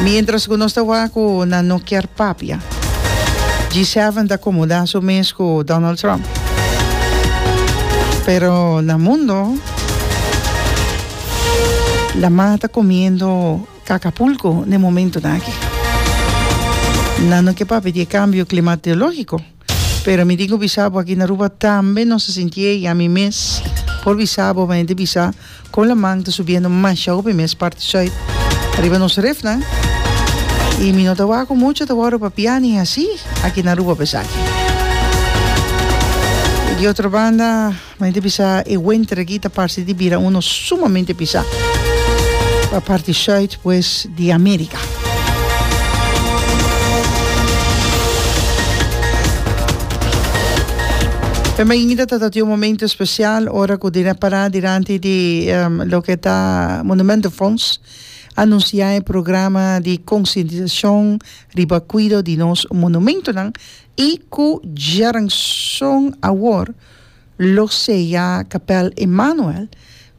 Mientras cu nos ta wak cu nan no kier papia, G7 ta comoda su mes cu Donald Trump. Pero na mundo, laman ta comiendo cacapulco na e momentonan aki. Nan no kier papia di e cambio climatologico. Pero mi tin cu bisa bo aki na Aruba tambe nos ta sinti ey, y ami mes por bisa bo mei di bisa con laman ta subiendo masha hopi mes parti Zuid riba nos refnan y mi no ta wak cu mucho ta worde pa pia ni haci aki na Aruba pesaki di otro banda. Ma e ta bisa e wenter aki ta parse di bira uno sumamente bisa pa parti sùit pues di Amerika. E mainita ta tabata un momento especial ora cu den a para dilanti di loke ta Monumentenfonds anuncia e programa di concientisacion riba cuido di nos monumentonan y cu djaranson awor Lo sea Kapèl Immanuel,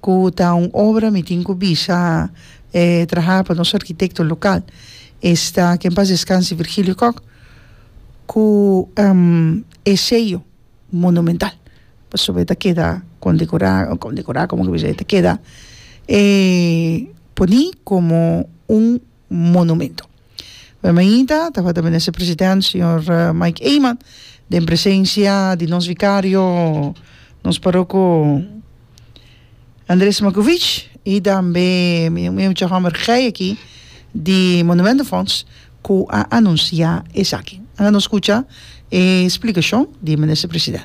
ku ta un obra mi tin ku bisa e traha pa nos arkitekto lokal, esta ke en pas deskanse Virgilio Kok, ku e seyo monumental pasobra e ta keda kondekorá, kondekorá komo ke bisa e ta keda e poní komo un monumento. Bemainta tabata Minister President Señor Mike Eman den presencia di nos Vicario nos Paroko Andres Makovich y tambe mi mucha homber gey aki di Monumento Fonds cu a anuncia esaki. Anga nos scucha e explicacion di Minister President.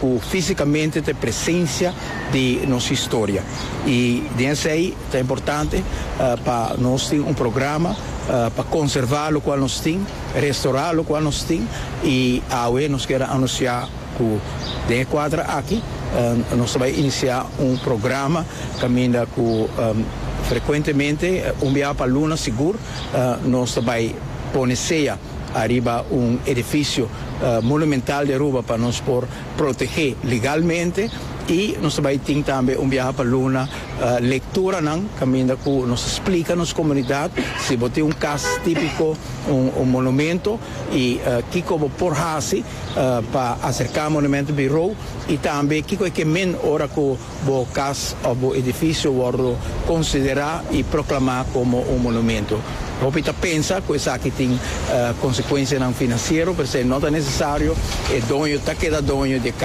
cu fisicamente ta e presencia di nos historia y den esey ta importante pa nos tin un programa pa conserva locual nos tin, restora locual nos tin y awe nos quier anuncia cu den e cuadra aki nos ta bay inicia un programa caminda cu frecuentemente un biaha pa luna sigur nos ta bay pone sea. Ariba un edifisio monumental di Aruba pa nos por protegé legalmente i nos ta bai tin tambe un biaha pa Luna lekturanan kaminda ku nos ta splika nos komunidat si bo tin un kas típiko, un monumento i kiko bo por hasi pa aserká monumento birou i tambe kiko e ke men ora ku. Bo cas of bo edificio wordo considera y proclama como un monumento. Hopi ta pensa cu esaki tin consecuencianan financiero, p'esei no ta necesario. E doño ta keda doño di e cas.